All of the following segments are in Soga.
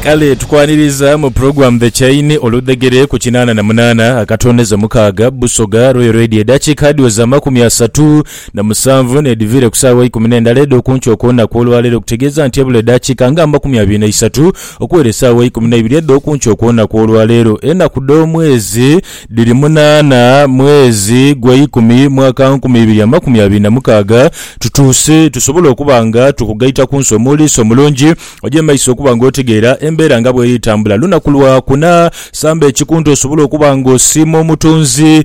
Kale tukwaniriza mu program The Chaini oludhegere ku kinaana na munaana akatondeza omukaaga Busoga Royal Radio edhakiika adhiweza amakumi asatu na musanvu n'edhiviire ku saawa eikumi n'endala edh'okunkyo okw'olunaku olwaleero okutegeeza nti ebula edhakiika nga amakumi abiri na isatu okuwera esaawa eikumi n'eibiri edh'okunkyo okw'olunaku olwaleero enaku dh'omwezi Dhiri munaana mwezi gweikumi mwaka nkumi ibiri amakumi abiri na mukaaga tutuuse tusobole okuba nga tukugaita ku nsi omuuliisi omulungi oje maiso okuba nga otegeera embeera nga bweri tambula lunaku lwa kuna samba ekikunta osobole okuba nga osiima omutonzi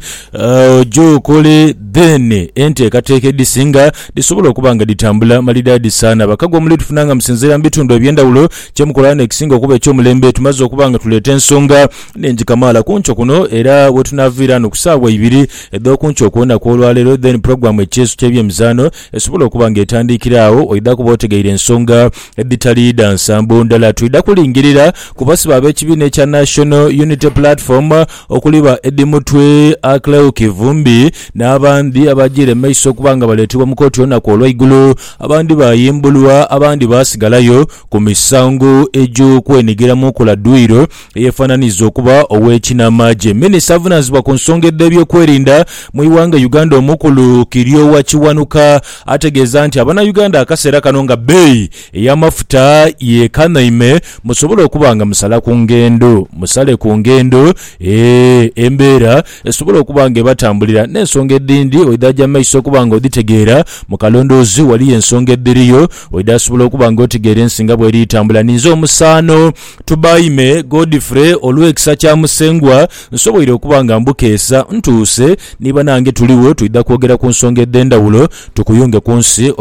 oje okole then enteekateeka edhisinga dhisobole okuba nga dhitambula malidaadi saana bakago omuli tufunanga musinziira mu bitundu ebyendawulo kyemukola wano ekisinga okuba ekyomulembe tumaze okuba nga tuleeta ensonga Ningi kamaala kunkyo kuno era wetunaviira no kusaawa ibiri edhokunkyo kulunaku olwaleero then program ekyeeso kyebyemizaano esobola okuba nga etandiikira agho oidha kuba otegeire ensonga edhitali dha nsambo ndala twidha kulingirira kubasibe abekibiina ekya National Unity Platform okuli ba Eddie Mutwe, Acleo Kivumbi nabandi abajiire mumaiso okuba nga baleetebwa mukooti olunaku olwaigulu abandi bayimbulwa abandi baasigalayo kumisango egyokwenigiramu nkola duyiro eyefananiza okuba ow'ekinamaagye, minisita avunanizibwa ku nsonga edh'ebyokwerinda mu ighanga Uganda omukulu Kiryowa Kiwanuka ategeeza nti abanauganda akaseera kano nga bbeeyi eyamafuta yekanaime musobola okuba nga musala ku ngendo musale ku ngendo embeera esobola okuba nga ebatambulira n'ensonga edhindi oidhaja maiso okuba nga odhitegeera mu kalondoozi waliyo ensonga edhiriyo oidhasobola okuba nga otegeera ensi nga bweri etambula ninze omusaano Tubaime Godfrey olw'ekisa kya Musengwa nsoboire okuba nga mbukeesa ntuuse ni banange tuligho twidha kwogera ku nsonga edh'endhawulo tukuyunge ku nsi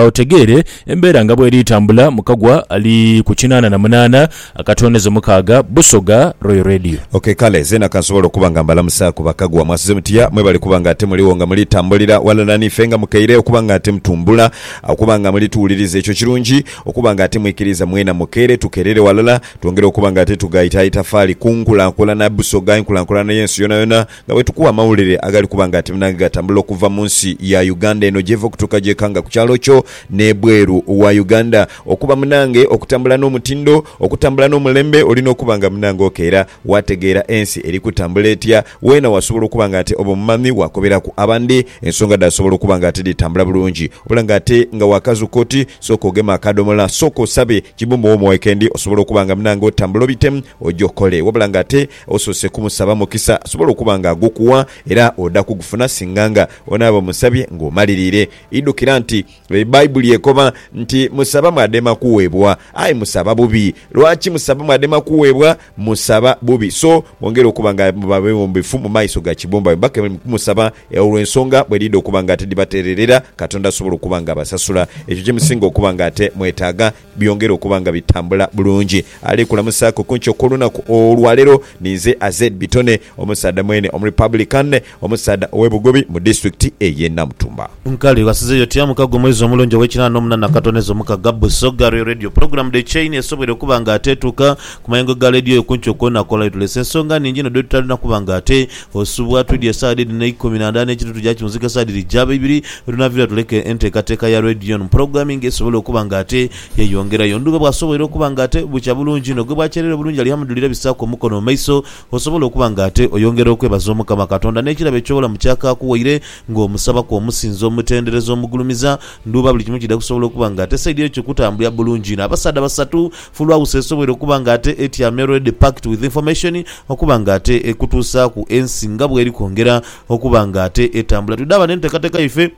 otegeere embeera nga bw'eri tambula mu kagwa ali ku kinaana na munaana akatooneza omukaaga Busoga Royal Radio. Ok kale zeena kansobole okuba nga mbalamusaaku bakagwa. Mwasuze mutya? Mwebale kuba nga ate muligho nga muli tambulira ghalala n'ife nga mukaire okuba nga ate mutumbula okuba nga muli tuwuliriza ekyo kirungi. Okuba nga ate mwikiriza mwena mukeere tukerere walala twongere okuba nga ate tughaita itafaali ku nkulankulana Busoga, enkulankulana y'ensi yonayona nga bwetukuwa amawulire agali kuba nga ate nage gatambula okuva mu nsi ya Uganda eno gyeva okutuuka gyekanga ku kyalo kyo n'ebweru wa Uganda. Okuba munange okutambula n'omutindo, okutambula n'omulembe olina okuba nga munange okeera. Waategeera ensi eri kutambula etya? Weena wasobola okuba nga ate oba omumami waakoberaku abandi ensonga dhaasobola okuba nga ate dhitambula bulungi. Wabula nga ate nga waakazuuka oti, sooka ogeme akaadomola, sooka osabe Kibumbwa wo mu weekendi osobole okuba nga munange otambula obite oje okole. Wabula nga ate osoose kumusaba mukisa asobole okuba nga agukuwa era oda kugufuna singa nga onaaba omusabye ng'omaliriire. Idhukira nti Baibuli ekoba nti, Musaba mwadema kuwebwa. Aye musaba bubi. Lwaki musaba mwadema kuwebwa? Musaba bubi. So mwongere okuba nga muba bewombefu mu maiso ga kibombabomba ke muli kumusaba olwe nsonga bwe dhidha okuba nga ate dhibatererera, Katonda asobole okuba nga abasasula ekyo kye musinga okuba nga ate mwetaaga. byongere okuba nga bitambula bulungi. Ali kulamusaaku kunki okw'olunaku olwaleero ninze Azed Bitone, omusaadha mwene omu Republican, omusaadha owe Bugobi mu disitulikiti eye Namutumba. Nkali ghasizeyo otya mukago omwezi omulungi ow'ekinana n'omunana katonha ezo mukaga Busoga Royal Radio Pulogulamu The Chain esobweire okuba nga ate etuuka ku mayengo ga leediyo yo kunki okw'olunaku olwaleero. Tuleese ensonga nhingi inho dhetutalina kuba nga ate Osubwa twidye esawa dhe dhino eikumi na ndala n'ekitundu tugya kiwunzika esawa dhiri gyaba ibiri wetunaviira tuleke enteekateeka ya Radio One Programming esobole okuba nga ate yeyongerayo. Ndhuba bw'asoboire okuba nga ate bukya bulungi inho gwe bw'akyereera obulungi Alihamudulira bisaaku omukono mu maiso osobole okuba nga ate oyongera okwebaza Omukama Katonda n'ekirabo eky'obulamu ky'akaakuwaire ng'omusabaku omusinza omutendereza omugulumiza Ndhuba buli kimu kidha kusobola okuba nga ate saidi eyo kikutambulira bulungi inho Abasaadha basatu Fulwawusi esoboire okuba nga ate etya meroed packed with information okuba nga ate ekutuusaaku ensi nga bweri kwongera okuba nga ate etambula. Twidhaba n'enteekateeka yaife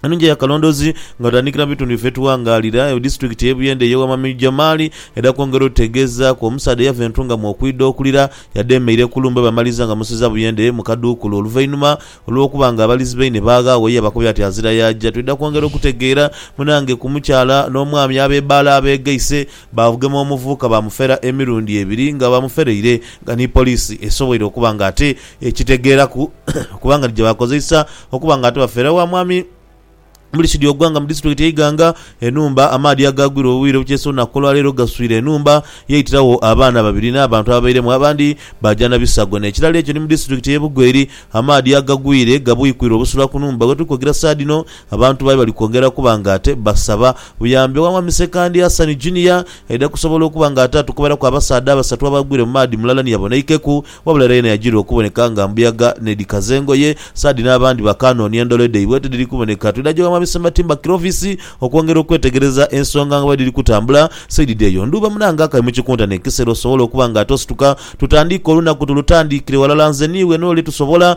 enungi eya kalondoozi nga tutandikira mu bitundu biffe etughangaalira. Disitulikiti ey'e Buyende eyowa Mwami Jamali edha kwongera otutegeezaaku omusaadha eyava e Ntungamo okwidha okulira yadheemeire ku lumbe bamaliza nga bamusiza Buyende mu kaduukulu oluvainhuma Olw'okuba nga abalizi baine baaghaawo, ye abakobera ati, Azira yaaja. Twidha kwongera okutegeera munange ku mukyala n'omwami ab'ebaale abeegaise baavugema omuvubuka baamufera emirundi ebiri nga bamuferaire nga ni poliisi esoboire okuba nga ate ekitegeeraku okuba nga ni gye baakozeisa okuba nga ate bafera wa mwami Muli Sudi Ogwanga mu Disitulikiti ye Iganga, enhumba amaadhi agaagwira obwire obukyesa olunaku olwaleero gaswire enhumba yaitiragho abaana babiri n'abantu ababairemu abandi baaja na bisago. N'ekirala ekyo ni mu disitulikiti ye Bugo eri, amaadhi agagwire gabwikwire obusula ku nhumba wetuli kwogera saha dhino abantu bayo bali kwongera kuba nga ate basaba buyambi owa Mwami Ssekandi Hassan Junior aidha kusobola okuba nga ate atukubiraku abasaadha abasatu abaagwire mu maadhi mulala ni yabonaikeku Wabula era yena yajirwa okuboneka nga mbuyaga n'edhikaza engoye, saadi n'abandi bakaanoonia ndhole dhaibwe tidhiri kuboneka. Twidha ghewamu abisoma timber kirovisi okwongera okwetegereza ensonga nga bwedhiri kutambula. Saidi dheeyo ndhuuba munange akali mu kikunta n'ekisero sobola okuba nga ate osituka tutandiike olunaku tulutandiikire walala nze n'iwe n'oli tusobola